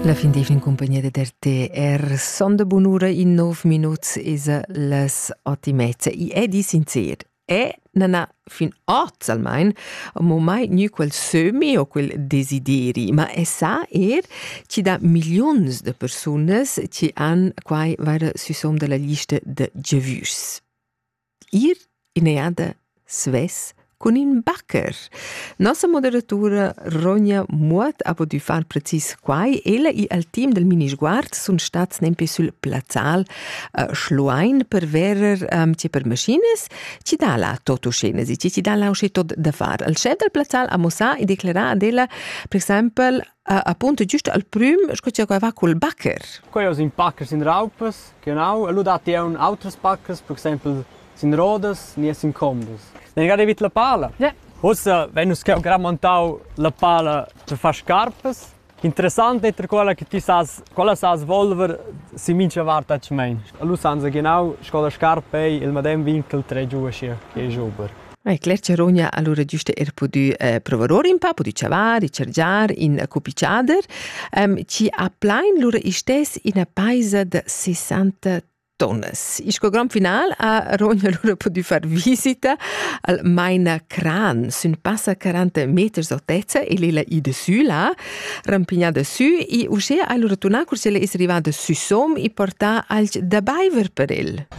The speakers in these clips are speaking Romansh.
La fin d'eivna in cumpagnia dad RTR son da bunura in nov minuts esa las ot e mezza. I è di sincer. E non ha fin oz almain mo mai gnü quel sömi o quel desideri, ma è sa er chi da milliuns de persunas chi han quai vaira süsom dalla lista de gevüs. Ir in'eada svess cun ün bacher. Nossa moderatura Ronja Muot ha pudü far precis quai. Ella e al team del Minisguard sun stats nempe sül plazzal uh, Schluein per verer um, tge per maschinas, chi dà la totuschenas e chi dà la usché tot da far. Il schef del plazzal ha mossà e declerà ad ella, per exempel, appunto giusto al prüm sco cha quai va cul bacher. Quai es ün bacher sin raupas che ho e lu dat eu autras bachers, per exaimpel sin rodas ni sin combos. Ne gada vit la pala? Ja. Ussa vegn nus cheu gran montau la pala per far scarpas. Interessant è quella che ti sas, quella sas volver si mincha vart atschmein. Lu sanza genau sco la scarpa ei il madem vin che il tre giu aschi che è jubber. Ai, Claire Charogna allora giusto er pudü eh, provar or un pa, pudü chavar, i chargiar in cuppicciader. Um, ci ha plain lura istes ina paisa da 60 tonnes. Il grand final ha Rogna allora potuto far visita al Maina Cran, sun passa 40 meters altezza e lila i de sü là, rampignada sü, e uscè allora turnà cursella es arrivada sü som e portà alch da baiver per el.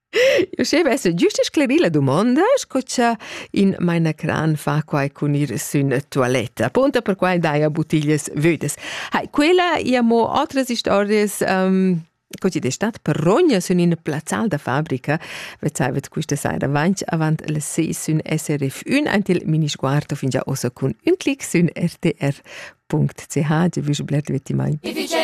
Eu schevess güsta sclerir la dumonda, sco cha in mainacran fa quai cun ir sün tualetta. Punto per quai daja buttiglias vödas. Hai, quella ia mo otras historias, um, co chi'd es stat progna sün ina plazzal da fabrica, vezzaivet quista saira avanti avant las ses sün SRF1 ant il minisguard fingià ossa cun ün clic sün rtr.ch, giavüsch bler dvettimaint.